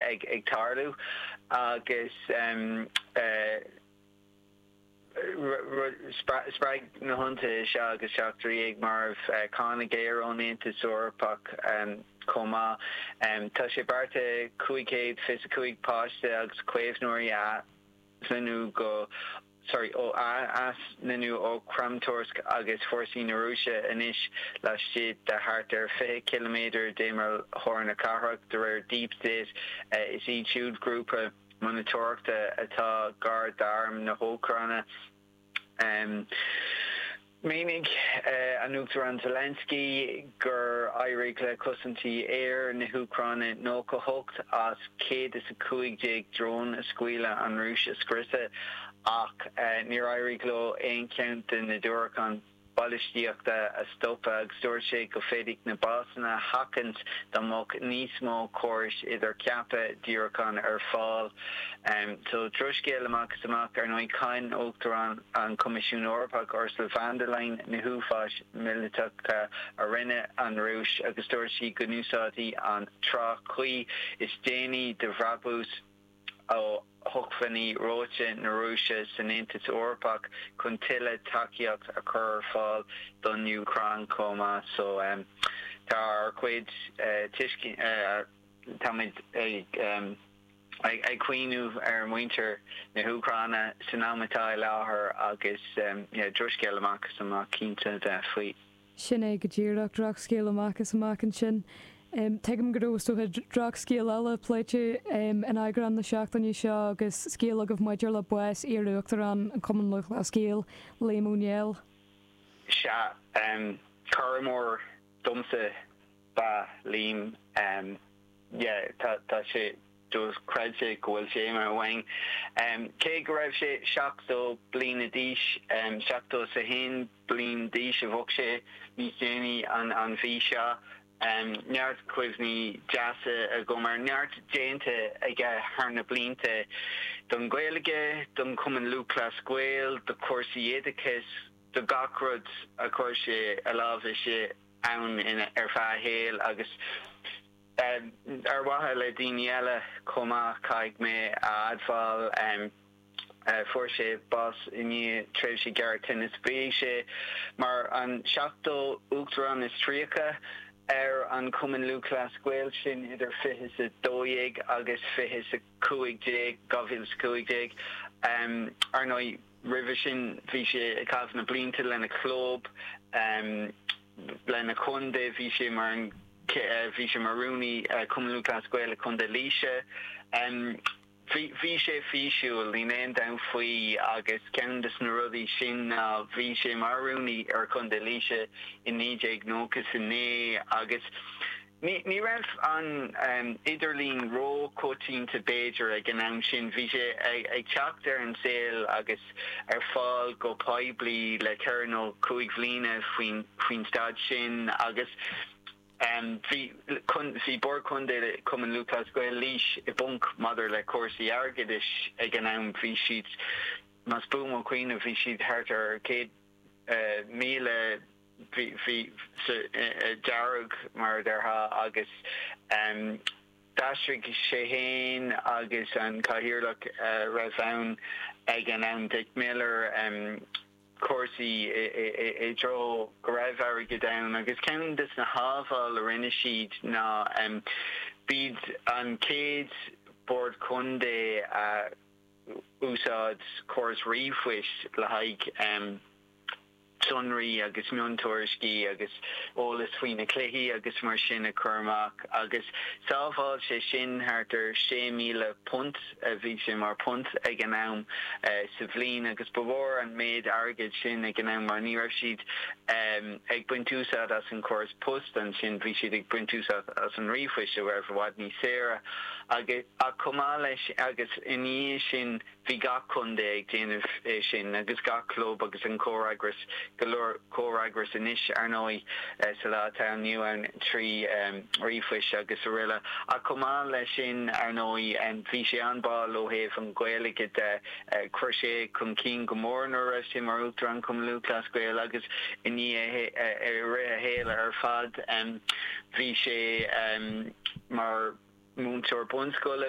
ag tarlú agus spreag na hionsaithe seo agus seachtar déag marbh cáineadh géar ón Aontas Eorpach chomh maith. Tá sé beartaithe 525 páiste agus caomhnóirí a athlonnú go. sorry, ó a aslonnú ó Kramatorsk agus fórsaí na Rúise anois laistigh de thart ar 20 km d'imeall Thoir na Cathrach, de réir Deep State. Is iad siúd grúpa monatóireachta atá gar d'arm na hÚcráine. Mhínigh an Uachtarán Zelensky gur éirigh le cosaintí aeir na hÚcráine 98 as 115 drón a scaoil an Rúis a scriosadh ach níor éirigh leo aon cheann de na diúracáin bailistíochta a stopadh agus dúirt sé go bhféadfaí na básanna a sheachaint dá mbeadh níos mó córais idircheaptha diúracán ar fáil. So drochscéal amach is amach, ar ndóigh. Cháin Uachtarán. an Coimisiún Eorpach, Ursula von der Leyen, na huafáis mhillteacha a rinne an Rúis agus dúirt sí go n-úsáidfí an tráthchuid is déanaí de bhrabús ó shócmhainní reoite na Rúise san Aontas Eorpach chun tuilleadh tacaíochta a chur ar fáil don Úcráin chomh maith. So tá ár gcuid tuiscint, táimid ag. ag cuimhniú ar mhuintir na hÚcráine san am atá i láthair agus drochscéal amach is amach cinnte dearfa. Sin é go díreach, drochscéal amach is amach ansin. Tuigim go raibh is dócha drochscéal eile pléite in eagrán na seachtaine seo agus scéal agaibh maidir le bás iar-Uachtarán an Chumainn Lúthchleas Gael, Liam Ó Néill. Sea, cara mór domsa. Ba, Liam, em, yeah, tá, tá sé, dochreidte go bhfuil sé marbh, em, cé go raibh sé seachtó bliana d'aois, em, seachtó is a haon bliain d'aois a bheadh sé níos déanaí an, an mhí seo, em, neart cuimhní deasa agam air, neart déanta aige thar na blianta don Ghaeilge, don Chumann Lúthchleas Gael, do chúrsaí oideachais, do gach rud a chuir sé a lámh i, sé. ann ar feadh a shaoil agus ar mhaithe le daoine eile chomh maith caithfidh mé a admháil. Fuair sé bás i ndiaidh tréimhse ghearr tinnis. Bhí sé mar an seachtú uachtarán is tríocha ar an Chumann Lúthchleas Gael, sin idir fiche is a dó dhéag agus fiche is a cúig déag, 2015. Ar ndóigh. Roimhe sin bhí sé ag caitheamh na blianta lena chlub, lena chontae. Bhí sé mar bhí sé mar rúnaí Chumann Lúthchleas Gael i gContae Laoise. Bhí sé físiúil, níl aon dabht faoi agus ceann de na rudaí sin ná bhí sé mar rúnaí ar Chontae Laoise i 1999 agus. Ní raibh an idirlíon ró-choitianta b'fhéidir ag an am sin. Bhí sé ag teacht ar an saol agus ar fáil go poiblí le ceithre nó cúig bhliana faoin staid sin agus bhí Bord Chontae Chumann Lúthchleas Gael Laois i bponc maidir le cúrsaí airgeadais ag an am. Bhí siad, más buan mo chuimhne, bhí siad thart ar chéad míle, sa dearg mar a déarfá agus d'aistrigh sé fhéin agus an cathaoirleach a raibh ann ag an am, Dick Miller, cúrsaí i dtreo go raibh airgead ann agus ceann de na sábháil a rinne siad ná b'iad an chéad bord contae a úsáid córas ríomhphoist le haghaidh. sonraí agus miontuairiscí agus eolas faoi na cluichí agus mar sin a chur amach agus shábháil sé sin thart ar £6,000 a bhí sé mar phunt ag an am sa bhliain agus ba mhór an méid airgid sin ag an am mar ní raibh siad ag baint úsáid as an chóras post ansin bhí siad ag baint úsáid as an ríomhphoist a raibh i bhfad níos saoire ach chomh maith leis agus i ndiaidh sin Bhí gach contae ag déanamh é sin agus gach club agus an comhfhreagras, go leor comhfhreagrais anois, ar ndóigh, sa lá atá inniu ann trí ríomhphoist agus aroile. Ach chomh maith leis sin, ar ndóigh, bhí sé an-mhaith ó thaobh an Ghaeilge de. Chuir sé chun cinn go mór nuair a raibh sé mar Uachtarán Chumann Lúthchleas Gael agus i ndiaidh i rith a shaoil ar fad bhí sé mar mhúinteoir bunscoile.